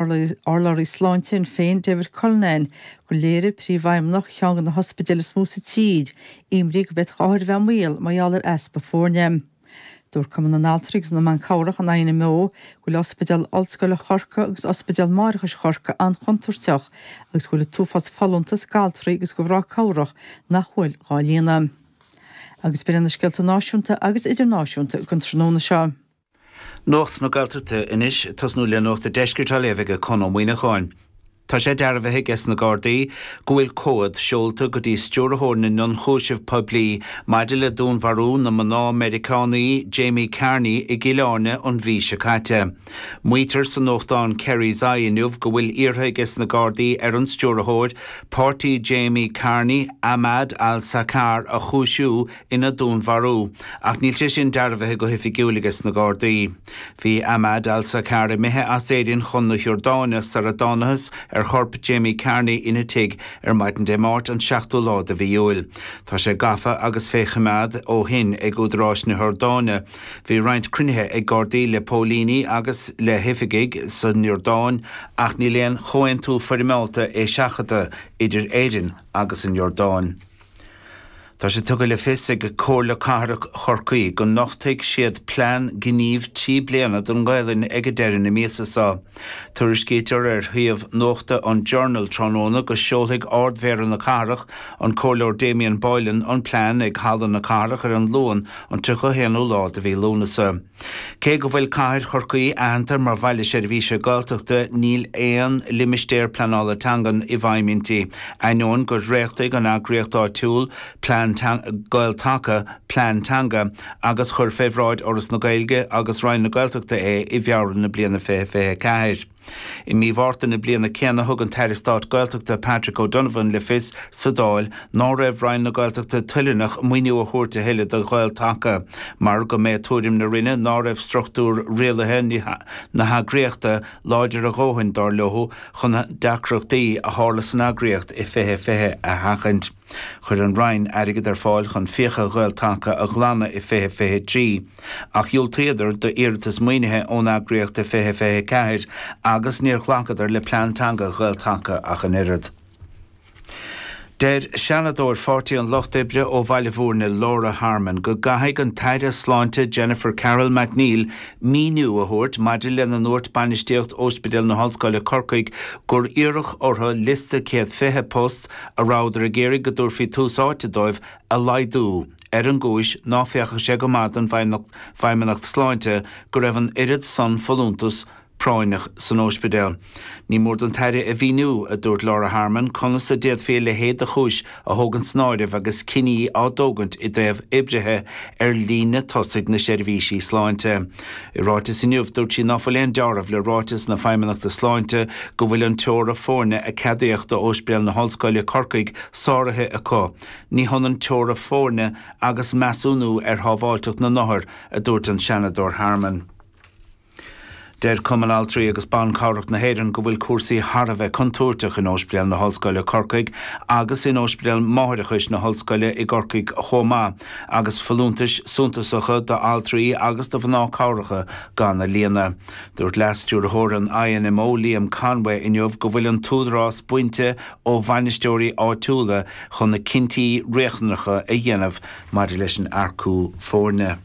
Urlabhraí Sláinte Shinn Féin David Cullinane gur léiriú Príomhfheidhmeannach cheann de na hospidéil is mó sa tír imní go bhféadfadh othair bheith i mbaol mar gheall ar easpa foirne. Dúirt Cumann na nAltraí agus na mBan Cabhrach an INMO go bhfuil Ospidéal Ollscoile Chorcaí agus Ospidéal Máithreachais Chorcaí an-chontúirteach agus go bhfuil an t-uafás folúntas d'altraí agus de mhná cabhrach nach bhfuil dhá líonadh. Agus b'in iad na scéalta náisiúnta agus idirnáisiúnta againn tráthnóna seo. Nuacht na Gaeltachta anois ag tosnú le nuacht an deiscirt á léamh aige Conn Ó Muíneacháin. Tá sé dearbhaithe aige sna Gardaí go bhfuil comhad seolta go dtí Stiúrthóir na nIonchúiseamh Poiblí maidir le dúnmharú na mná Meiriceánaí Jamie Carney i gCill Airne an mhí seo caite. Maítear sa nuachtán Kerry's Eye inniu go bhfuil iarrtha aige sna Gardaí ar an Stiúrthóir páirtí Jamie Carney, Ahmad al-Saqar a chúisiú ina dúnmharú, ach níl sé sin dearbhaithe go hoifigiúil aige sna Gardaí. Bhí Ahmad al-Saqar imithe as Éirinn chun na hIordáine sar a dtánathas ar chorp Jamie Carney ina tigh ar maidin Dé Máirt an 7ú lá de mhí Iúil. Tá sé gafa agus fé choimeád ó shin ag údaráis na hIordáine. Bhí roinnt cruinnithe ag Gardaí le póilíní agus le hoifigigh san Iordáin ach níl aon chomhaontú foirmeálta eiseachadta idir Éirinn agus an Iordáin. Tá sé tugtha le fios ag Comhairle Cathrach Chorcaí go nochtfaidh siad plean gnímh trí bliana don nGaelainn aige deireadh na míosa seo. Tuairiscítear ar shuíomh nuachta an Journal tráthnóna go seolfaidh Ard-Mhéara na cathrach, an Comhairleoir Damien Boylan, an plean ag Halla na Cathrach ar an Luan an 31ú lá de mhí Lúnasa. Cé go bhfuil cathair Chorcaí aitheanta mar Bhaile Seirbhíse Gaeltachta níl aon Limistéar Pleanála Teangan i bhfeidhm inti, ainneoin gur dhréachtaigh an eagraíocht áitiúil, plean, Gael-Taca, plean teanga, agus chuir fé bhráid Fhoras na Gaeilge agus Roinn na Gaeltachta é i bhFeabhra na bliana 2024. I mí Mhárta na bliana céanna thug an tAire Stáit Gaeltachta Patrick O'Donovan le fios sa Dáil ná raibh Roinn na Gaeltachta toileanach maoiniú a thabhairt a thuilleadh do Ghael-Taca mar go mba é tuairim na Roinne ná raibh struchtúr rialaithe na heagraíochta láidir a dhóthain, dár leo, chun deacrachtaí a tharla san eagraíocht i 2020 a sheachaint. Chuir an Roinn airgead ar fáil chun fiacha Ghael-Taca a ghlanadh i 2023, ach dhiúltaíodar d'iarratas maoinithe ón eagraíocht i 2024 agus níor ghlacadar le plean teanga Ghael-Taca ach an oiread. Deir Seanadóir Pháirtí an Lucht Oibre ó Bhaile Bhúirne Laura Harmon go gcaithfidh an tAire Sláinte Jennifer Carroll MacNeill míniú a thabhairt maidir lena ndúirt bainistíocht Óispidéal na hOllscoile Corcaigh gur iarradh orthu liosta céad fiche post a rabhadar ag iarraidh go dtabharfaí tús áite dóibh, a laghdú, ar an gcúis ná féachadh sé go maith don Feidhmeannacht Sláinte go raibh an oiread san folúntas práinneach san óispidéal. Ní mór don Aire a mhíniú, a dúirt Laura Harmon, conas a d'fhéadfaí a leithéid de chúis a thógaint san áireamh agus cinní á dtógaint i dtaobh oibrithe ar líne tosaigh na seirbhísí sláinte. I ráiteas inniu, dúirt sí ná fuil aon deáramh le ráiteas na Feidhmeannachta Sláinte go bhfuil an teora foirne a ceadaíodh do Óispidéal na hOllscoile, Corcaigh, sáraithe acu. Ní hionann teora foirne agus measúnú ar shábháilteacht na n-othar, a dúirt an Seanadóir Harmon. Deir Cumann Altraí agus Ban Cabhrach na hÉireann go bhfuil cúrsaí thar a bheith contúirteach in Óispidéal na hOllscoile, Corcaigh agus in Óispidéal Máithreachais na hOllscoile i gCorcaigh chomh maith. agus folúntais suntasacha d'altraí agus do mhná cabhracha gan a líonadh. Dúirt Leas-Stiúrthóir an INMO Liam Conway inniu go bhfuil an t-údarás bainte ó bhainisteoirí áitiúla chun na cinntí riachtanacha a dhéanamh maidir leis an earcú foirne.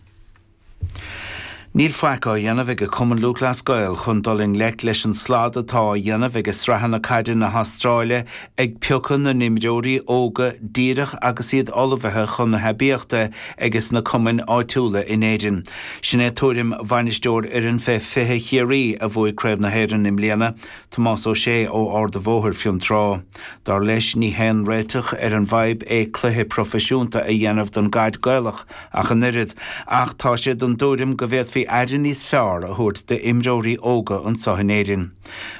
Níl faic á dhéanamh ag an gCumann Lúthchleas Gael chun dul i ngleic leis an slad atá á dhéanamh ag sraitheanna caide na hAstráile ag piocadh na n-imreoirí óga díreach agus iad ullmhaithe chun na haibíochta ages na cumainn áitiúla in Éirinn. Sin é tuairim bhainisteoir fhoireann fé 20 Chiarraí a bhuaigh Craobh na hÉireann i mbliana, Tomás Ó Sé ó Ard a' Bhóthair, Fionn Trá. Dar leis, ní haon réiteach ar an bhfadhb é cluiche proifisiúnta a dhéanamh den gcaid Gaelach ach an oiread, ach tá sé den dtuairim go bhféadfaí aire níos fearr a thabhairt d'imreoirí óga anseo in Éirinn.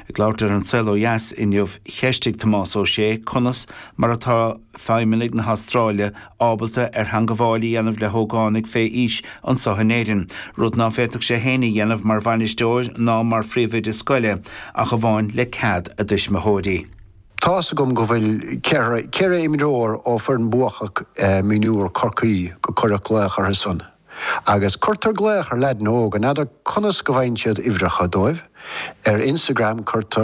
Ag labhairt ar An Saol Ó Dheas inniu, cheistigh Tomás Ó Sé conas mar atá feidhmeannaigh na hAstráile ábalta ar theangabháil a dhéanamh le hógánaigh fé aois anseo in Éirinn, rud ná féadfadh sé féin a dhéanamh mar bhainisteoir ná mar phríomhoide scoile, ach amháin le cead a dtuismitheoirí. Tá's agam go bhfuil ceithre, ceithre imreoir ó fhoireann bhuachach mionúr Corcaí go cuireadh glaoch orthu san agus cuirtear glaoch ar leaidin óga, n'fheadar conas go bhfaigheann siad uimhreacha dóibh, ar Instagram cuirtear.